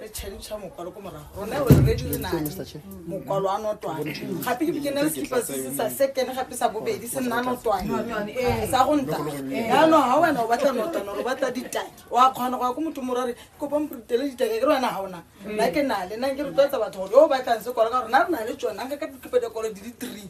re change mokwalo ko morago rona re re dire nane mokwalo a notwane gape ke bikene re sekipa se se sa sekene gape sa bobedi se nna notwane sa go nta yaanong ga wena o batla notwane ore o batla ditake wa kgona go ya ko motho morare kopa mporutele ditake ke re wena ga ona nna ke nale nna ke rotloetsa batho gore yo o batlang sekwalo ka gore na re na le tsone anka ka dikipedekolo di le three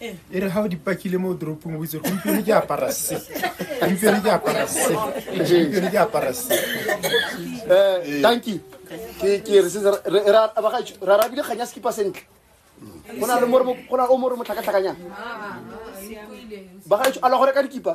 e re ga o dipakile mo toropong o itse gompieno ke apara se gompieno ke apara se gompieno ke apara se eh tanki ke ke re se ra ra ra bile kganya skipa sentle go na le mo go na o mo re mo tlhakatlhakanyang ba ga a lo gore ka dikipa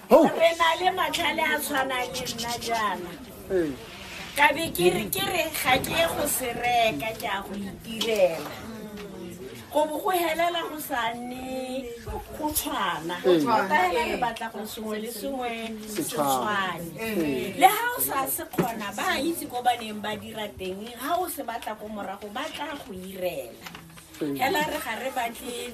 re na le matlhale a tshwanang le nna jaana ka be ke re ke re ga ke ye go se reka ke a go itirela go bo go helela go sa nne go tshwana ka hela re batla go sengwe le sengwe se tshwane le ga o sa se kgona ba itse ko ba neng ba dira teng ga o se batla ko morago ba tla go irela Ela re ga re batle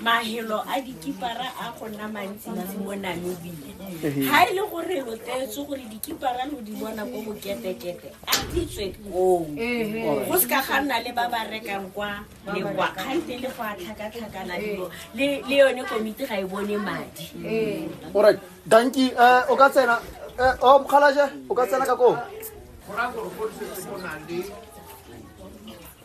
mahelo a dikipara a go nna mantsintsi mo namibia ga e le gore lo teetse gore dikipara lo di bona ko boketekete a ditswe koo go se ka ga nna le ba ba rekang kwa lekwa kgante le go a tlhakatlhakana dilo le yone komiti ga e bone madi orit danki um eh, o ka tsena eh, o oh, mokgalaje o ka tsena ka koo